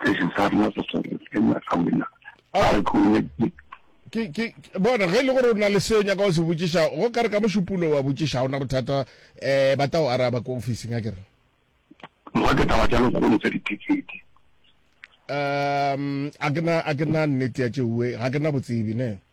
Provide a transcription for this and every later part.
station sa rena sa sore ke nna ka wena a khole ke ke bona ge e le gore o na le seo nyaka o se botšiša go ka re ka mošupulo wa botšiša ona bothata um ba tao araba ko officing a kere moga ke taba tša lekgolo tsa dithekete um a ke na nnete ya tšeue ga ke na botsebe ne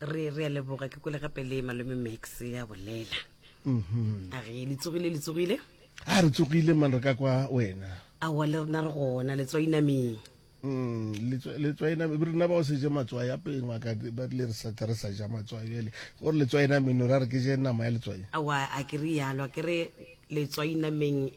re re a leboga ke kole gape le malome max ya bolela a re le tsogile le tsogile a re tsogile man re ka kwa wena awa le rena re gona letswainameng Mm, letswa- letswaena be rena ba o se je matswai apeng wa ka ba rile re sa tla re sa ja matswai bjale gore letswaena meno ra re ke je nama ya letswai awa a ke re yalo a ke re letswainameng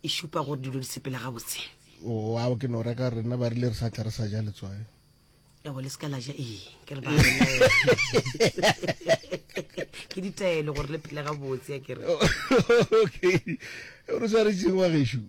e šupa gore dilo di sepela gabotse oao ke no reka rena ba rile re sa tla re sa ja letswae ebo le seka la ja ee ke re ba ke ditaelo gore le phele gabotse ya kere okay re sa re tsengwa geshu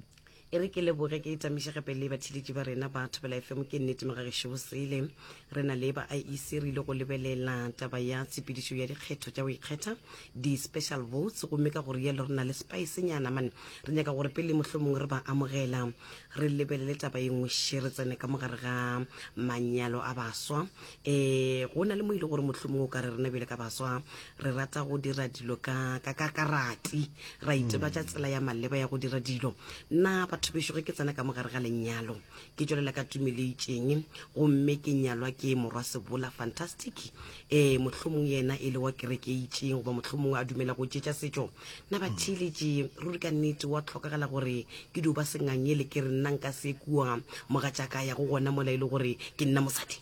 e re ke leboge ke itamiše gape le batheletši ba rena ba thobela fm ke nnete magagešo bosele Re na le ba IEC re ile go lebelela taba ya tshepedišo ya dikgetho tša go ikgetha, di-special votes, gomme ka go rialo re na le spice-nyana mane. Re nyaka gore pele mohlomongwe re ba amogela, re lebelele taba ye nngwe še, re tsene ka mo gare ga manyalo a baswa. E, go na le mo e le gore mohlomongwe o ka re rena bjale ka baswa re rata go dira dilo ka, ka, ka, ka rati, ra itebatša tsela ya maleba ya go dira dilo. Na batho bešo ge ke tsena ka mo gare ga lenyalo, ke tšwelela ka tumeleitšeng gomme ke nyalwa ke morwa sebola fantastic um mohlomong yena e le wa kerekeitšeng goba mohlomong a dumela go tšetša setšo na hmm. bathiletše ruri ka nnete wa tlhokagala gore ke dio ba sengangele ke re nna nka se kua mogatšaka ya go gona mola e le gore ke nna mosadi